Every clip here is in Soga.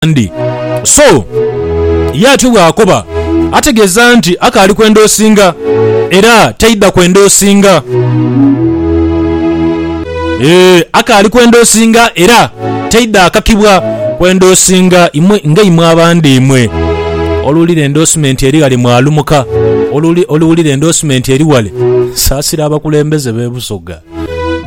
abandi. So ye atyo bw'akoba ategeeza nti akaali kwenda osinga era taidha kwenda osinga. Eeh, akaali kwenda osinga era taidha akakibwa kwenda osinga. Imwe nga imwe abandi imwe oluwulira endoosimenti eri ghale mwalumuka, oluwulira endoosimenti eri wale, saasira abakulembeze b'e Busoga.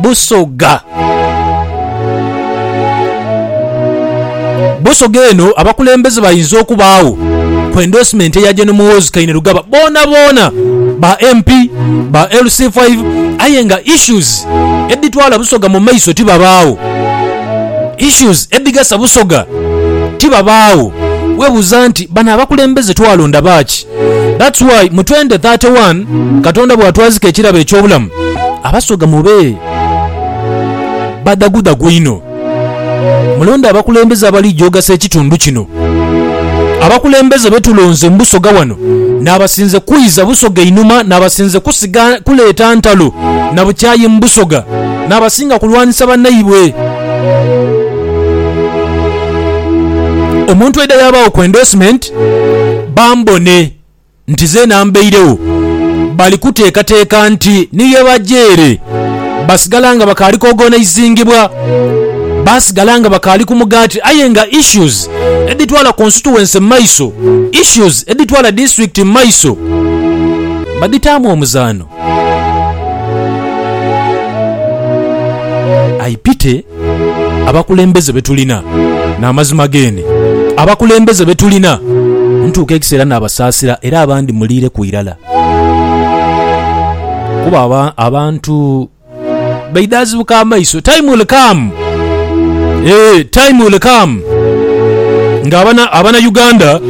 Busoga. Busoga eno abakulembeze bainza okubaagho ku endorsement eya Gen Muhoozi Kainerugaba boonaboona ba MP, ba LC5 aye nga issues edhitwala Busoga mu maiso tibabaagho. Issues edhigasa Busoga tibabaagho. Webuuza nti bano abakulembeze twalonda baaki? That's why mu 2031 Katonda bwatwazika ekirabo eky'obulamu, Abasoga mube badhagudhagu inho. Mulonde abakulembeze abalija ogasa ekitundu kino. Abakulembeze betulonze mu Busoga wano n'abasinze kwiza Busoga einhuma n'abasinze kusiga kuleeta ntalo na bukyayi mu Busoga n'abasinga kulwanisa banaibwe. Omuntu aidha yabaagho ku endorsement bambone nti zeena mbairegho, bali kuteekateeka nti ni ye baja ere. Basigala nga bakaali kuogonizingibwa, basigala nga bakaali ku mugaati aye nga issues edhitwala constituency mu maiso, issues edhitwala disitulikiti mu maiso badhitaamu omuzaano. I pity. Abakulembeze be tulina n'amazima geene. Abakulembeze be tulina ntuuka ekiseera naabasaasira era abandi muliireku irala. Kuba abantu baidhaazibuka amaiso. Time will come, eeh time will come nga abana Uganda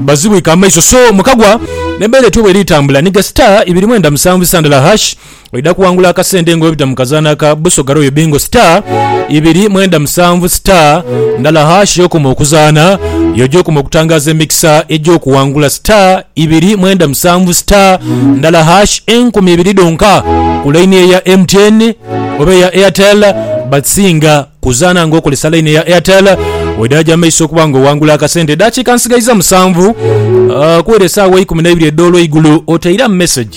bazibwike amaiso. So mukagwa n'embeera etyo bweri tambula ni ga star ibiri mwenda musanvu isa ndala hash. Oidha kuwangula akasente nga webita mu kazaana ka Busoga Royal Bingo star ibiri mwenda musanvu star ndala hash y'okoma okuzaana y'oja okoma okutangaaza emikisa egy'okuwangula star ibiri mwenda musanvu star ndala hash enkumi ibiri dhonka ku laini eya MTN oba eya Airtel but singa kuzaana nga okozesa laini eya Airtel oidha aja maiso okuba nga owangula akasente. Edaakiika nsigaiza musanvu uh, kuwera esaawa ikumi naibiri edh'olweigulo oteira mu message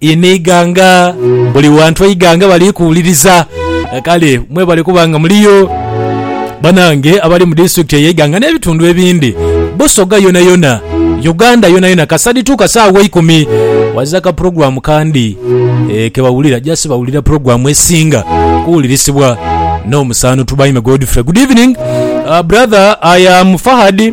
Inho eighanga buli wantu eighanga bali kuwuliriza kale mwebale kuba nga muliyo banange abali mu disitulikiti eye Iganga ne bitundu ebindi Busoga yona yona Uganda yona yona kasadi tuka saawa eikumi waza ka program kandi e, kebawulira just bawulira program esinga kuwulirisibwa no musaano Tubaime Godfrey good evening uh, brother I am Fahad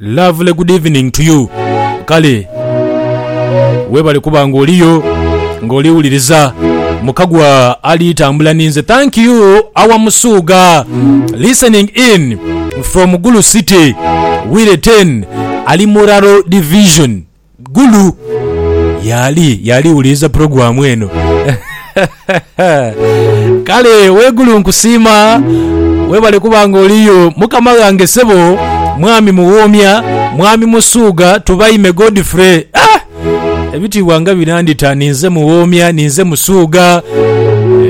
Lovely good evening to you kale webale kuba nga oliyo nga oli wuliriza mukagwa ali tambula ninze thank you our musuuga listening in from gulu city wire ten ali muraro division Gulu! Y'ali, y'ali wuliriza pulogulaamu eno. Kale we Gulu nkusiima, webale kuba nga oliyo. Mukama ghange ssebo, Mwami Muwoomya, Mwami Musuugha, Tubaime Godfrey. Ah! Ebitiibwa nga binandita, ninze Muwoomya, ninze Musuugha.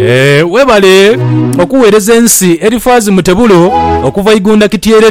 Eh, webale okuweereza ensi. Erifaazi Mutebulo okuva Igunda Kityerera.